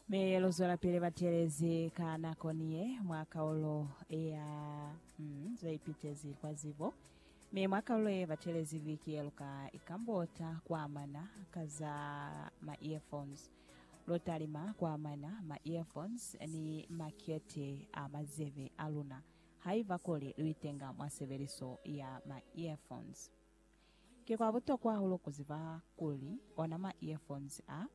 Mi luzwelapili batelezi ka nako niye mwa kaulo ya mm, zeipitezi kwa zibo. Mi mwa kaulo ye batelezi viki yeluka ikambota kuamana ka za ma earphones. Lutalima kuamana ma earphones ni makete a mazebe aluna haiba kuli luitenga mwa sebeliso ya ma earphones. Ki kwa butokwa hahulu ku ziba kuli ona ma earphones a,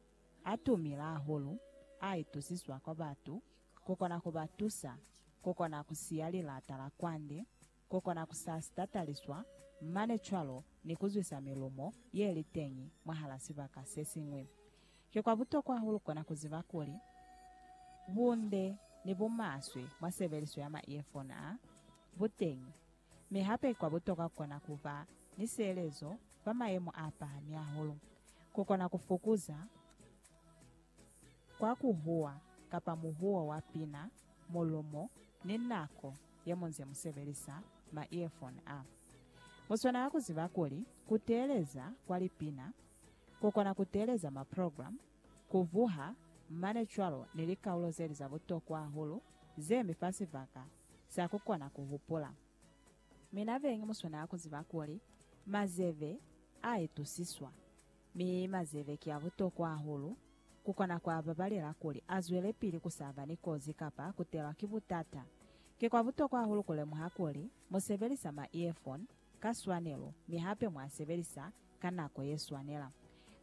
a tumila hahulu, a itusiswa kwa batu, ku kona ku ba tusa ku kona ku siya lilata la kwande, ku kona ku sa sitataliswa, mane cwalo ni ku zwisa milumo ye li teñi mwahala sibaka se siñwi. Ki kwa butokwa hahulu kona ku ziba kuli bunde ni bumaswe mwa sebeliso ya ma earphone a, bu teñi. Mi hape kwa butokwa kukona kuba ni sielezo fa mayemo a pahami hahulu, kukona ku fukuza kwa ku huwa kapa muhuwo wa pina, mulumo, ni nako ye mu nze mu sebelisa ma earphone a. Mu swanela ku ziba kuli ku teeleza kwa lipina, ku kona ku teeleza ma program, ku vuha, mane cwalo ni likaulo zeli za butokwa hahulu ze mi fa sibaka za ku kona ku hupula. Mi na beñi mu swanela ku ziba kuli mazebe a itusiswa, mi mazebe ki a butokwa hahulu ku kona ku a babalela kuli a zwelepili ku sa ba ni kozi kapa ku telwa ki butata. Ki kwa butokwa hahulu ku lemuha kuli mu sebelisa ma-earphone ka swanelo mi hape mu a sebelisa ka nako ye swanela.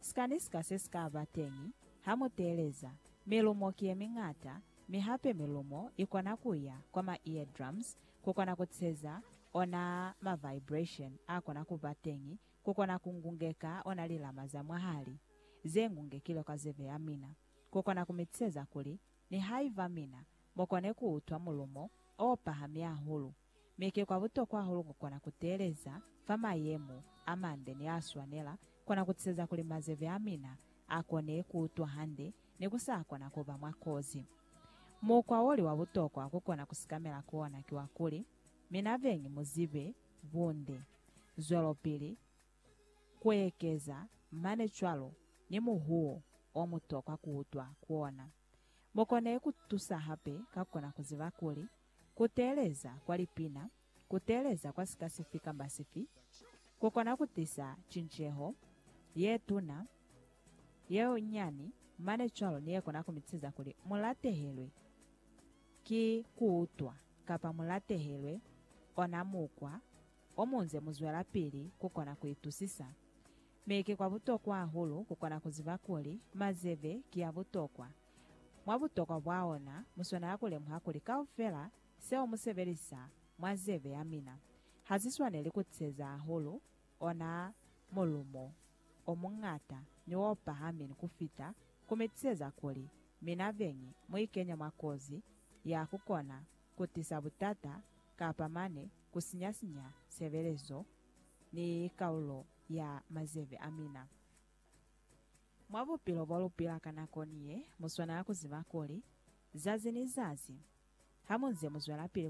Sika ni sika se si ka ba teñi ha mu teeleza milumo ki ye miñata Mi hape milumo ikona kuya kwa ma eardrums kukona kutseza ona ma vibration akona kuba teñi kukona kungungeka ona lilama za mwahali zengungekilwe kwa zebe yamina kukona kumitseza kuli nihaiba mina mukone kuutwa mulumo opahami ahulu Mi ki kwa butokwa hahulu ku kona ku teeleza fa mayemo a mande ni a swanela, kona ku tiseza kuli mazeve a mina a kone ku utwa hande ni ku sa kona ku ba mwa kozi. Mukwa wo li wa butokwa ku kona ku sikamela ku ona ki wa kuli, mina beñi mu zibe bunde, zwelopili ku ekeza, mane cwalo ni muhuwo o mu tokwa ku utwa ku ona. Mu kone ku tusa hape ka ku kona ku ziba kuli, ku teeleza kwa lipina, ku teeleza kwa sika sifi kamba sifi, ku kona ku tisa cinceho ye tuna, ye nyani mane cwalo ni ye kona ku mitiza kuli mu latehelwe ki ku utwa kapa mu latehelwe ona mukwa o mu nze mu zwelapili ku kona ku itusisa. Mi ki kwa butokwa hahulu ku kona ku ziba kuli mazebe ki a butokwa. Mwa butokwa bwa ona, mu swanela ku lemuha kuli kaufela seo mu sebelisa mwa zebe ya mina ha si swaneli ku tiseza hahulu ona mulumo o muñata ni o pahamin ku fita, ku mi tiseza kuli mina beñi mu ikenya mwa kozi ya ku kona ku tisa butata kapa mane ku sinya-sinya sebelezo ni kaulo ya mazebe a mina. Mwa bupilo bo lu pila ka nakoni ye, mu swanela ku ziba kuli, zazi ni zazi, ha mu nze mu zwelapili